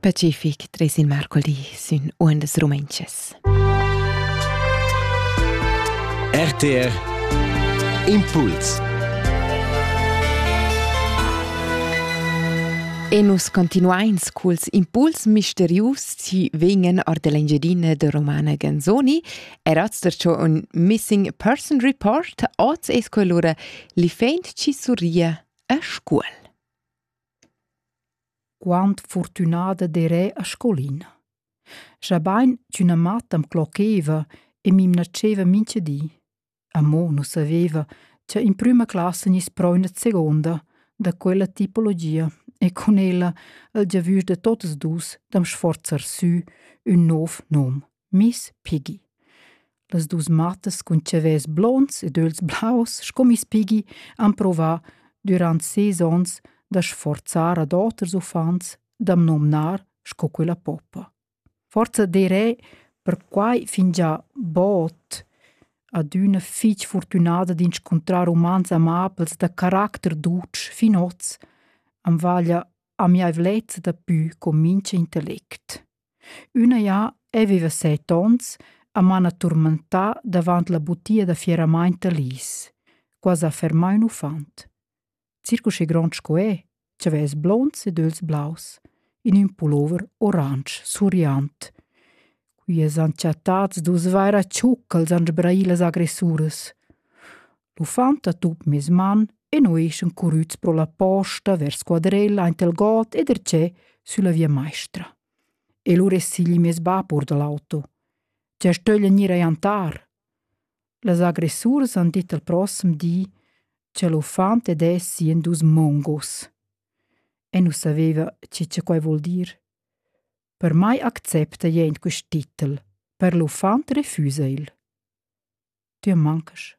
Pacific treis il mercoli sün uondas rumentschas. RTR Impuls E nus continuains culs impuls misterius ci vegnan or dell'Engiadina de Romana Ganzoni e razdercio un missing person report oz es quell'ora li feint ci surria a scuol. Quant fortünada derè a scolina. Schabain ch'üna matta am clocheva e m'imnatscheva mincha di. Amo nu saveva cha in prüma classa gniss pro üna seguonda da quella tipologia e cun ella al giavüsch da totas duos da'm sforzar sü ün nouv nom. Miss Piggy. Las dus mattas cun chavels blonds ed ögls blaus sco Miss Piggy han provà durant ses ons da sforzar ad oters uffants d'am nomnar sco quella poppa. Forza derè perquai fingià bod adüna fich fortünada d'inscuntrar umans amabels da caracter dutsch fin hoz am vaglia amiaivlezza da pü con mincha intellect. Üna ja ei viva set ons a mana turmentà davant la butia da fieramaint da Lis, quasi a fermar ün uffant. Circuschi grond sco è, c'avess blonds ed öls blaus, in ün pullover oransch suriant. Qui es han chattats dus vaira tschuccals an sbraïlas agressuras. L'uffant ha tup mes man e nu eschan currüts pro la posta vers quadrella aint il god e dercè sülla via maistra. E lura es sigli meis bap our da l'auto. Tgè stöglia gnir a jantar? Las agressuras han dit al prossem di cha l'uffant ed es sien dus mongos. E nu saveva chi cha quai vuol dir. Per mai accepta jent quist titel, per l'uffant refüsa il. Tü am mancasch.